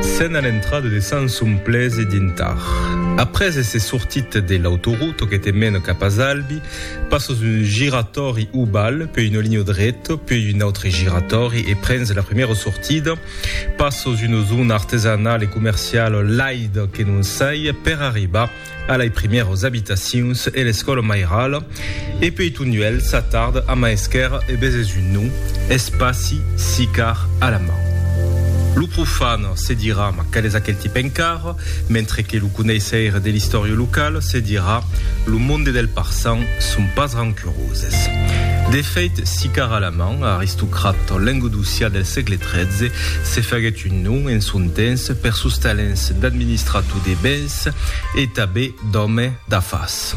Sena l'entrada de Sanson Plese dintar. Après èsser sortit de l'autorota que te mena cap a Zalbi, passas un giratòri oval, puèi una linha dreta, puèi un autre giratòri e prens la primièra sortida. Passas una zona artesanala e comerciala laida que non sai per arribar A lei primèros abitacions e l'escòla mairala, e peiton uèlh s'atard a maesquèr e beses un nom, eth passi, sicar, a la man. Lo profan se dirà, ma qual es aquel tip encara? mentre que lo coneisseire de l'istòria locala se dirà, lo monde del parçan son pas rancuroses. De feit, sicar a la man, aristocrat lengodocià del sègle tretze, se faguèt un nom en son temps per sos talents d'administrator de bens, d'animais e tanben d'òme d'afars.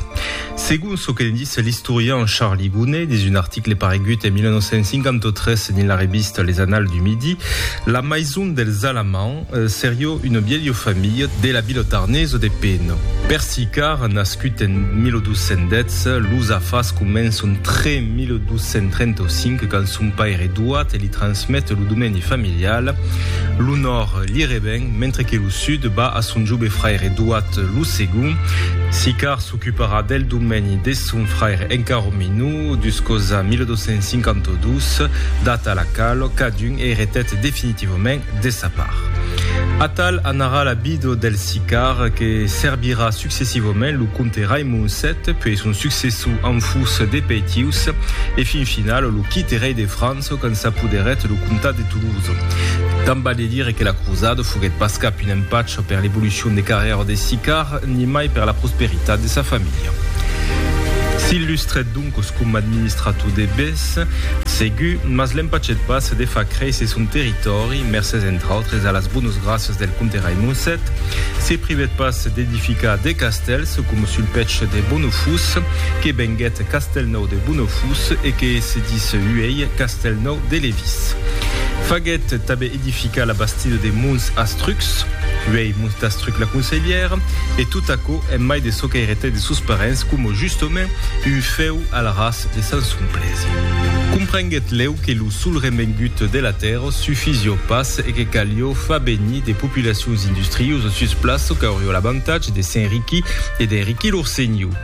Segon çò que ne ditz l'istorian Charlie Gonnet dins un article paregut en 1953 dins la revista Les Annales du Midi, la maison dels Alamans serió una vièlha familha de la vila tarnesa de Peno. Per Sicard, nascut en 1210, los afars començon tre 1235 quand son paire Eduard li transmet lo domeni familial, l'onor li reven, mentre que lo sud va a son jobe fraire doat lo segond, Sicard s'ocuparà del domeni de son fraire encara minor, duscosa 1252, data a la qual cadun eretèt definitivament de sa part. Atal anarà la vida del Sicard que serbirà successivament lo comte Raimond vii, puèi son successor en fus de Peitius e fin final lo quite rei de França, çò qu'en s'apoderèt lo comtat de Toulouse. Tant val de dire que la crosada foguèt pas cap un empach per l'evolucion de carrièra de Sicard, nimai per la prosperitat de sa familha. S'illustrèt doncos coma administrator de bés, segur, mas l'empachèt pas de far créisser son territòri, mercés entre autres a las bonas gràcias del comte Raimond vii. Se privèt pas d'edificar de castèls, coma sul pech de Bonofús, que venguèt Castèlnau. de Bonofus e que se dis uèi Castèlnòu de Levís. Faguèt tanben edificar la bastida de Mons Astrucs, uèi Mons d'Astruc la Conselhièra, e tot aquò en mai de çò qu'airetèt de sos parents coma justament un fèu al ras de Sant Somplèsi. Comprenguèt lèu que lo sol remengut de la tèrra sufizió pas e que calió far venir de populacions industriuses sus plaça qu'aurió l'avantatge de s'enriquir e d'enriquir lor senhor.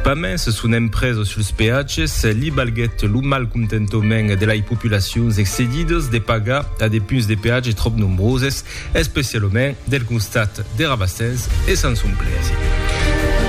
Pas mens son empresa suls peatges li balguèt lo malcontentament de lai populacions excedidas de pagar a de punts de peatge tròp nombroses, especialament del costat de Rabassens e Sanson-Plèzi.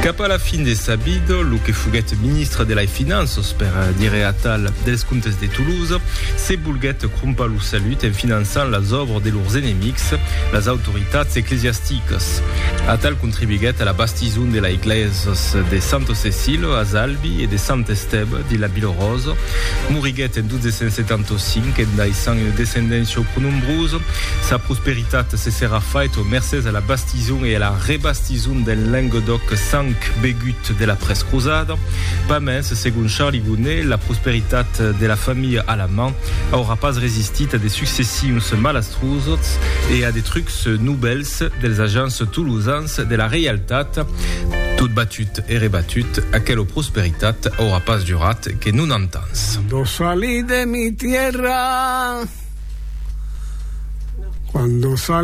Cap a la fin de sa vida, lo que foguèt ministre de lai Finanças, per dire atal, dels Comptes de Toulouse, se volguèt crompar lo salut en finançant las òbras de lors enemics, las autoritats eclesiasticas. Atal contribuiguèt a la Tison de la Eglèsas de Santo Cecilio a Zalbi e de Sant Estèba de la Bilorosa. Moriguèt en 1275 en daissant una descendéncia pro nombrosa. Sa prosperitat se serà faita mercés a la bastison e a la rebastison del Lenguedòc sang begut de la prescrosada. Pas mens, segon Charly Gonnet, la prosperitat de la familha Alamand aurà pas resistit a de successions malastrosos e a de trucs novèls. dels agents tolosans de la reialtat, tot batut e rebatut, aquelo prosperitat aurà pas durat que nonanta ans. Cuando salí de mi tierra, cuando salí.